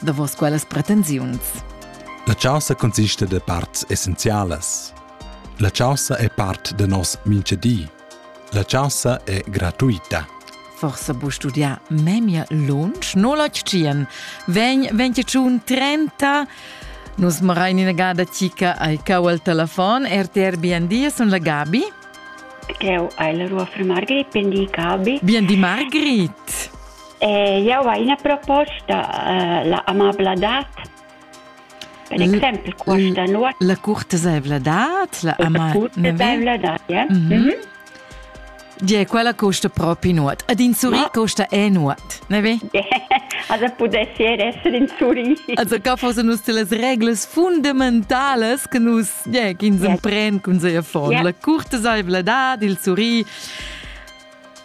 davos quellas pretensiuns. La chaussa consista de parts essenzialas. La chaussa è part de nos minchedi. La chaussa è gratuita. Forse bu studiar memia lunsch, no la tschien. Vegn 21 30 Nus marai ina gada tica ai cau al telefon, RTR BND sun la Gabi. Eu ai la rua fra Margrit, BND Gabi. BND Margrit. Jau hai ina proposta, la amabladad. Per exempel questa noz. La curtesaivladad, la amabladad, ja. Gie, quella costa propi nuot. Ad in suri costa è nuot, ne ve? Also pudessi essere in suri. Also ca fosse nus las reglas fundamentales che nus, yeah, che ins empren cun seia fon. La curtesaivladad, il suri.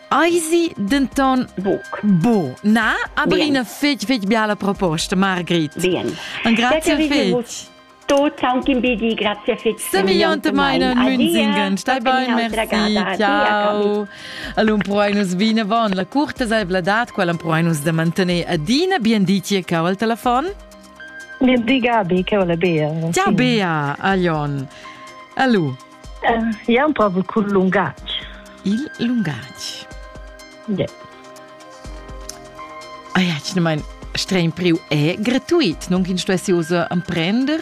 Eisi denton buc. Bu. Na, aber Bien. eine fitch, fitch biala proposta, Margrit. Bien. Un grazie fitch. Tots aunc in bedi, grazie fitch. Se milliontemein Münzingen, stai bein, merci, ciao. Allum proinus vinavon, la curta zaivladad, quella proinus da mantener adina bien ditie cau al telefon. Bien di Gabi, che ho la Bea. Ciao Bea, Alion. Allo. Ia amprava cul lungatg. Il lungatg? Yeah. Ah ja, ich meine, streng priu è gratuit, non kin sto usa emprender.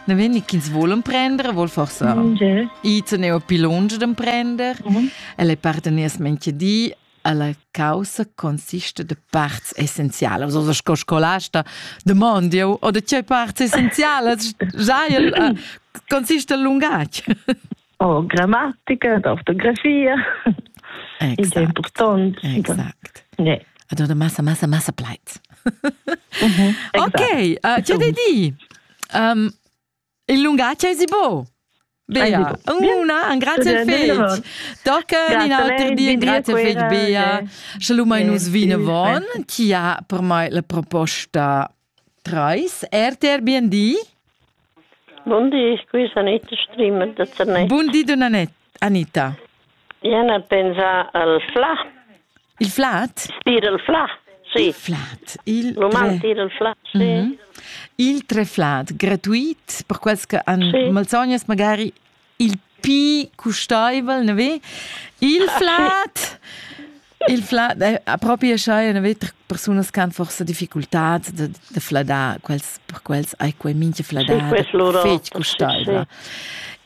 Ne wenn ich ins wohl emprender, wohl forse mm, yeah. i zu ne pilonger d'emprender. Mm -hmm. Elle parteners menche di Ella caussa consista de parts essenzialas, oder sco scolasta demond jeu, o de tgei parts essenzialas giail uh, consiste il lungatg? Oh, grammatica, d'ortografia, exact. il important. Exact. Nee. Also de massa, massa, massa pleit. mhm, ok, uh, ti de di, um, Il lungatg esi bo. Bea, una, un grazie fetg. Tocca in auter bien, grazie fetg, Bea. Sche lu mai nus vinavon, chi ha per mai la proposta treis. RTR BND. Bundi, qui Anita Strimer da Zernez. Bundi, Donna Netta. Anita. Ien a pensar al fla. Il flat? Dir il fla, sì. Il flat. Il Roman dir il flat, sì. Mm -hmm. Il treflat, gratuit, per quels che han sì. malsognas magari il pi custaivel, ne ve? Il flat Il flad è propi schai una vita persunas che han forse difficultad da, da fladar quels per quels hai quei mincha fladar fetg custaivla.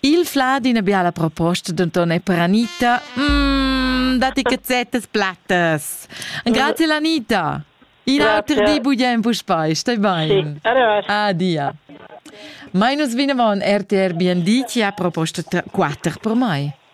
Il flad ina biala proposta denton è per Anita. Mm, dati cazzettas plattas. Grazie Anita. In auter di bugen puspei, stai bene. Sì, Adia. Minus Vinavon RTR BND ti ha proposto 4 per mai.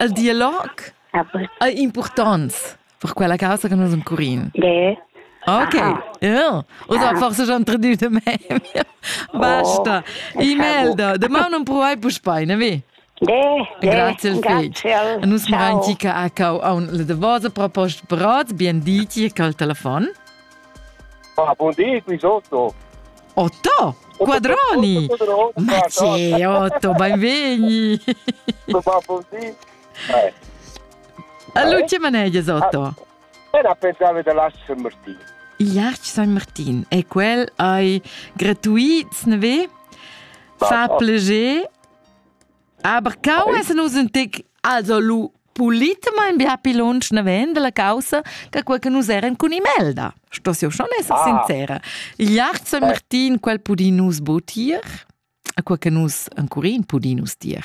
Il dialog ei impurtonts per quella caussa che nus encurin. Ge. Ok, ja. Oder forse schon traduit de meme. Basta. E-mail da. De mau non provai puspei, ne vi? De, Grazie al Grazie Nus maranti che ha cau aun le de vosa proposta brot, bien diti, col telefon. Ah, buon dì, qui sotto. Otto Quadroni! Ma c'è Otto, benvegni! Ma buon dì. Eh. Allora, che manegia Otto? Era pensavo da Lascia San Martino. Iac San Martin. E quel hai gratuit, ne ve? Fa pleger Aber cau es nus ün tic also lu pulitamain bia pi lunsch naven dalla caussa che quel che nus eran cun Imelda. Stoss io schon esser ah. sincera. Iart San Martin quel pudi nus botir, a quel che nus ancurin pudi nus dir.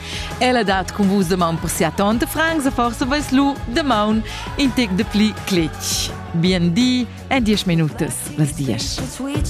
Ella dat cun vus damaun per sia tonta Franza, forse vais lu damaun in tec de pli cletg. Bien di e diesch minutas, las dies.